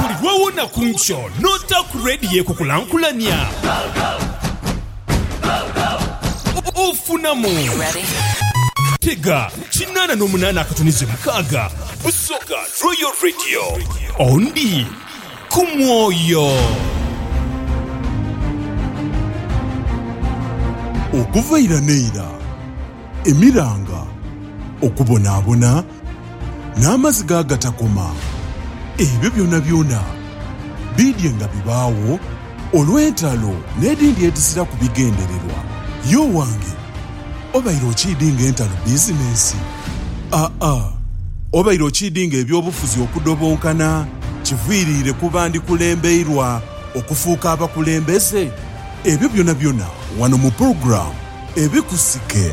Buli lw'owona ku nkyo n'ota ku leediyo ekukulankulania, ofunamu. Tega kinaana n'omunaana akatuni ze mukaaga busoga Royal Radio. Ondi ku mwoyo. Okuva ira n'eira. emiranga, okubonaabona, n'amaziga agatakoma, ebyo byonabyona biidye nga bibaagho olw'entalo n'edhindi edhiziraku bigendererwa. Ye owange, obaire okiidinga entalo bizinensi? Aa, obaire okiidinga eby'obufuzi okudobonkana kiviiriire kuba ndikulembeirwa okufuuka abakulembeze? Ebyo byonabyona wano mu pulogulaamu Ebikusike.